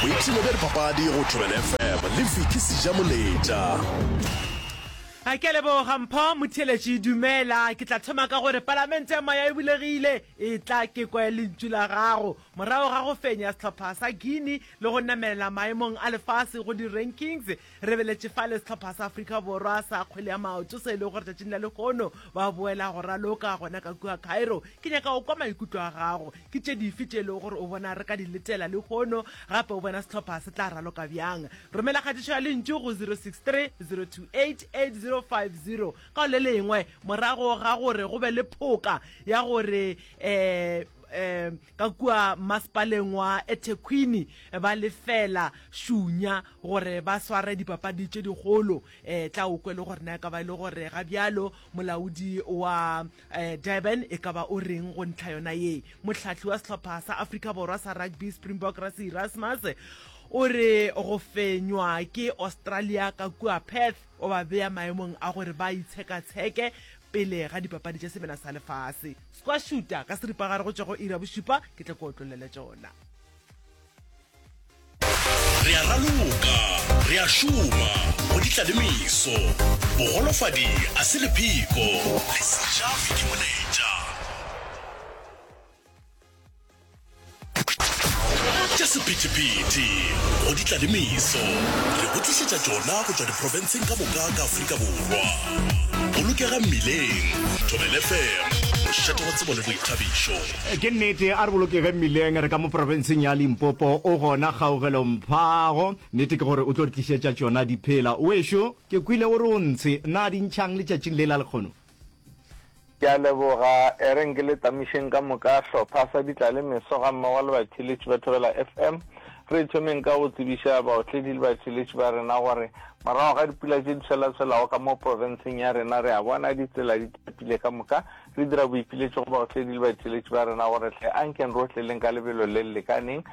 Boipshino bja dipapadi go Thobela FM le Vicky Sejamoletša. A ke a leboga Mpho motheeletši. Dumela, ke tla thoma ka gore Palamente ya Moya e bulegile. Etla ke kwe lentšu la gago. Morago ga go fenya sehlopha sa Guinea le go namelela maemong a lefase go di-rankings, Re beletše fale sehlopha sa Afrika Borwa sa kgwele ya maoto se e lego gore tšatšing la lehono ba boela go raloka gona ka kua Cairo. Ke nyaka go kwa maikutlo a gago. Ke tše dife tše e lego gore o bona re ka di letela lehono, gape o bona sehlopha se tla raloka bjang? Romela kgatišo ya lentšu go 0630288050 ka go le lengwe morago ga gore go be le phoka ya gore um um Ka kua masepaleng wa eThekwini ba lefela šunya gore ba sware dipapadi tše dikgolo. Tla o kwe le gore na e ka ba e le gore ga bjalo molaodi wa Durban e ka ba o reng go ntlha yona ye. Mohlahli wa sehlopha sa Afrika Borwa sa rugby Springbok Rassie Erasmus o re go fenywa ke Australia ka kua Perth O ba bea maemong a gore ba itshekatsheke pele ga Dipapadi tša Semena sa Lefase. Squash shooter ka seripagare go tšwa go iri ya bošupa, ke tla ke otlollele tšona. Re a raloka, re a šoma go ditlalemiso. Bogolofadi a se lepheko, le se ja fitimonetša. tša sephethephethe go di tla le meso re go tlišetša tšona go tšwa diprofenseng ka moka ka afrika borwa bolokega mmileng thobele fm mošate wa tsebo le boithabišo ke nnete a re bolokege mmileng re ka mo profenseng ya limpopo o gona kgaogelo mphago nnete ke gore o tlo re tlišetša tšona diphela o ešo ke kwile o re o ntshe na dintšhang letšatšing le la lekgono Ke a leboga, e reng ke le tamišeng ka moka hlopha sa ditlale meso ga mmogo le batheletši ba Thobela FM. Re thomeng ka go tsebiša baotledi le batheletši ba rena gore morago ga dipula tše di tshwelatshwelago ka mo profenseng ya rena re a bona ditsela di tapile ka moka re dira boipiletšo go baotledi le batheletši ba rena gore tle a nkeng rotleleng ka lebelo le le lekaneng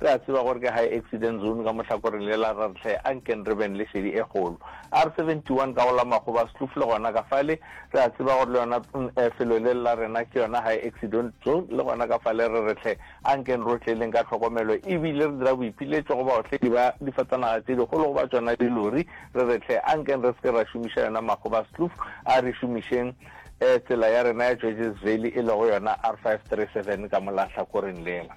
Re a tseba gore ke high accident zone ka mohlakoreng le la rra Rhle, a nkeng re beng le šedi e kgolo. R71 ka go la Makgoba, Skloof le gona ka fale, re a tseba gore le yona pnl felo le la rena ke yona high accident zone le gona ka fale re re Rhle, a nkeng re o tleeleng ka tlhokomelo e bile re dira boipiletšo go baotledi ba difatanaga tše dikgolo go ba tšona dilori, re re Rhle, a nkeng re se ke ra šomiša yona Makgoba, Skloof, a re šomišeng tsela ya rena ya Georges Valley e lego yona R537 ka mo la hlakoreng lela.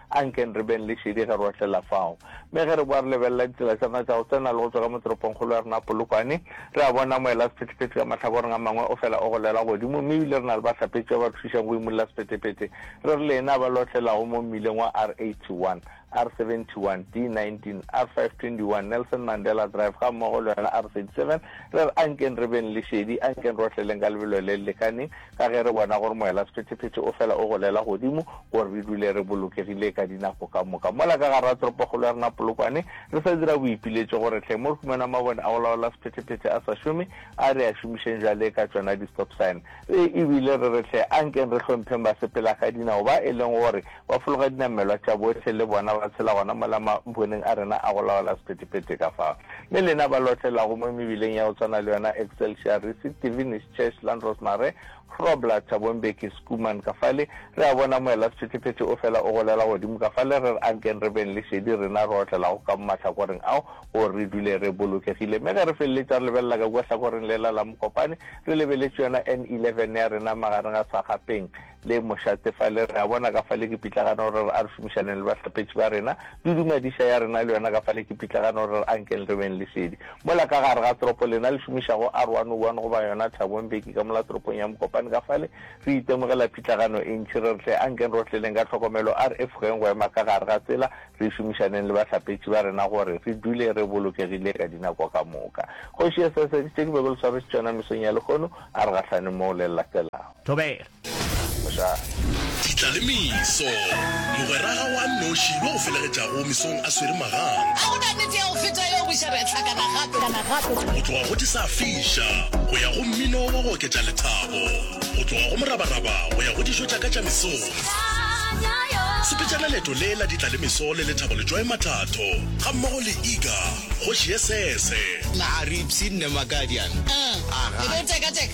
Ankeng re beng le šedi ge re otlela fao. Mme ge re boa re lebelela ditsela tša rena tša go tsena le go tšwa ka mo toropongkgolo ya rena Polokwane, re a bona moelasephethephethe ka mahlakoreng a mangwe o fela o golela godimo, mme ebile re na le bahlapetši ba ba re thušang go imolla sephethephethe. Re re le ena ba le otlelago mo mmileng wa R81, R71, D19, R521, Nelson Mandela Drive gammogo le yona R37, re re ankeng re beng le šedi, ankeng re otleleng ka lebelo le le lekaneng, Ka ge re bona gore moela-sephetephete o fela o golela godimo gore re dule re bolokegile ka dinako ka moka, mola ka gare ga toropokgolo ya rena Polokwane re sa dira boipiletšo gore hleng mo re humana mabone a go laola sephetephete a sa šome, a re a šomišeng bjale ka tšona di-stop sign. Ee, e bile re re hle a nkeng re hlompheng basepelakadinao ba e leng gore ba fologa dinamelwa tša bohle le bona ba tshela gona mola maboneng a rena a go laola sephetephete ka fao le lena ba lotlelago mo mebileng ya go tswana le yona Excelsior Risi, Tivi, Cheslan Rosemary Grobler Thabo Mbeki Schoeman ka fale, re a bona moela sephethephethe o fela o golela godimo ka fale, re re a nkeng re beng le šedi rena re otlelago ka mo mahlakoreng ao gore re dule re bolokegile. Mme ge re feleletša re lebelela ka kua hlakoreng lela la Mokopane, re lebeletše yona N11 ya rena magareng ga Sagapeng, le mošate fale, re a bona ka fale ke pitlagano gore re a re šomišaneng le bahlapetši ba rena, le dumadiša ya rena le yona ka fale ke pitlagano gore re ankeng re beng lesedi. Mola ka gare ga toropo, lena le šomišago R101 goba yona Thabo Mbeki ka mola toropong ya Mokopane ka fale, re itemogela pitlagano e ntši. Re re hle ankeng re otleleng ka tlhokomelo, a re efogeng go ema ka gare ga tsela, re šomišaneng le bahlapetši ba rena gore re dule re bolokegile ka dinako ka moka. Kgoši Esese, ke tše ke bego le swarešitšona mesong ya lehono, a re gahlane moo le le latelago. Thobela. Ditla le meso. Mogweraga wa nnoši yo o felegetšago mesong a swere magang. Ga go na nnete ya go feta yeo, bošaba ya hlakana gape. Go tloga go di sa fiša go ya go mmino wa go oketša lethabo, go tloga go morabaraba go ya go dijo tša ka tša mesong. Sepetšana leeto le la ditla le meso le lethabo Letšwae Mathatho gammogo le Iga, kgoši ye sese. Nna Aripsi, nne Makadian. Ebe o teka teka.